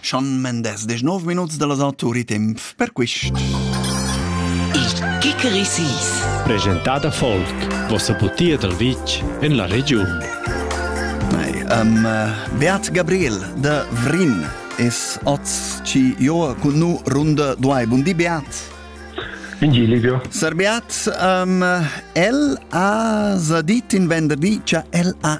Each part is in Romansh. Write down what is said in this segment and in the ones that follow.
Schon menders 19 minuts dalla Turi temp per quist. Il Kikerisis. Presentada folk. Vossa putia dal vitg en la regiun. Nei, um, Beat Gabriel da Vrin is oz ci jo con nu runda duai. Bundi Beat. Ingilivio. Sir Beat, um, el ha zadit in venderdi, cha el ha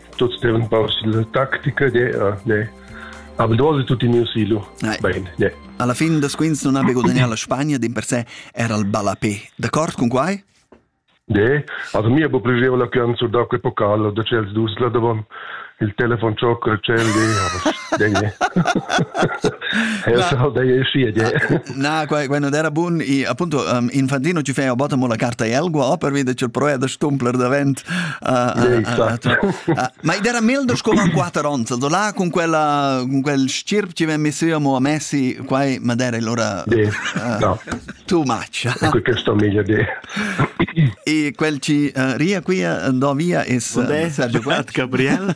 Tuts devan pausi la tactica de, de. Aber du hast tutto in mio silo. Bene, ne. Alla fine das Queens non abbia guadagnato la Spagna din per sé era il Balapé. D'accordo con quai? De, also mia bo pregevo la Kian sur da quei pocal da Chelsea dus la davon il telefon choc Chelsea, aber Na, quai non era bun. E appunto, um, infantino ci fai a botta mo la carta el gua per vide c'el proe da stumpler davent. Ma id era mel da scola quatter ons, also là con quella con quel scirp ci ven messia mo a messi, quai ma dera allora too much. Ecco questo meglio de. E quel ci ria qui do via is Sergio Guard Gabriel.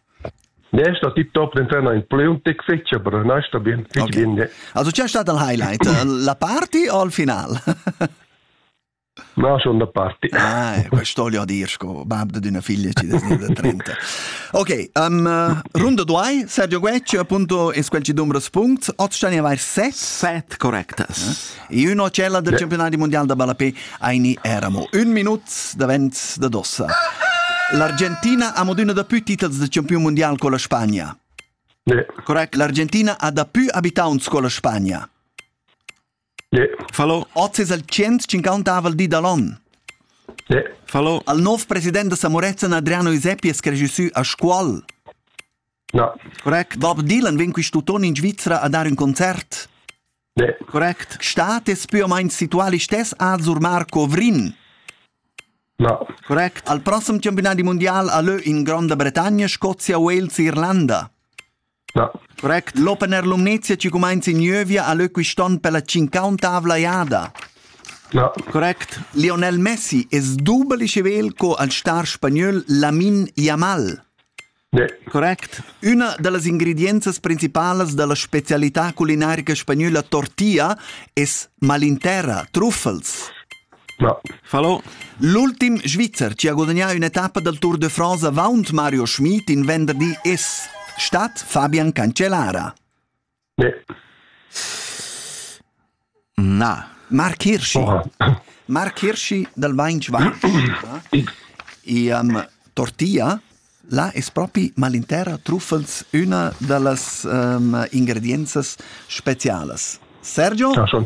L'ester tip-top d'entraina in plü ün tec fetscha, però na sta bien, fich okay. bien. Also c'è stato il highlight, la party o il final? No, schon da party. Ah, questo gli ho dir sco bab di una figlia ci da 30. Ok, um, runda 2, Sergio Guecci appunto in quel ci dumbra spunts, oggi stani a 7? 7 correctas. Eh? In ocella del campionati mondial da ballapé aini eramo un minut davent da dossa. L'Argentina ha mod una da più titels de campion mondial con la Spagna. Yeah. Correct, l'Argentina ha da più abitants con la Spagna. Yeah. Fallo, oz es al 150 di dall'on. Yeah. Fallo, al nov president de Samorezen Adriano Iseppi es cresciuto su a scuol. No. Correct, Bob Dylan vien quist'auton in Svizzera a dare un concert. Correct. Stat es pür o main situà listess al Surmar Covrin. No. Correct. Al prossem campionat mundial ha lö in Gronda Bretagna, Scozia, Wales e Irlanda. No. Correct. L'Opener Lumnezia ci cumainza in Gnövia, ha lö quist'on per la cinquantavla jada. No. Correct. Lionel Messi es dubel ricevel co al star spagnöl Lamin Yamal. Correct. Üna da las ingredienzas principalas da la specialità culinarica spagnöla tortilla es malinterra, truffels. No. Fallo. L'ultim Svizzer ci ha guadagnato un'etappa dal Tour de France avaunt Mario Schmid in venderdi es stat Fabian Cancellara. Na. Marc Hirschi. Marc Hirschi dal Weinschwanz. Ehm, tortilla, là es propi malintera truffels üna da las ehm, ingredienzas specialas. Sergio? Ja, schon.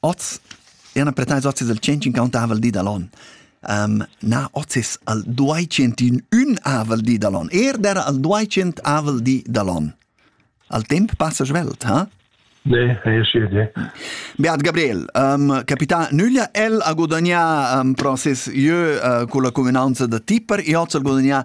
Oz, ina pretais oz es il tschient cinquantavel di da l'on. Um, na, oz es al duaicentun unavel di da l'on. Er der al duaicentavel di da l'on. Al temp passa svelt, ha? Ne, è uscire. Beat Gabriel, um, capità Nüglia, el ha gudagnà um, pro ses jeu uh, con la cuminanza da Tipper e oz ha gudagnà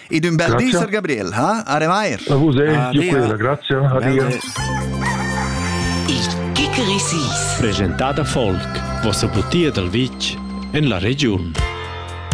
Ed un bel di, Sir Gabriel, ha? A revair. A vos è, io quella, grazie, adia. Il Kickerisis. Presentada Folk, vossa butia dal vitg en la regiun.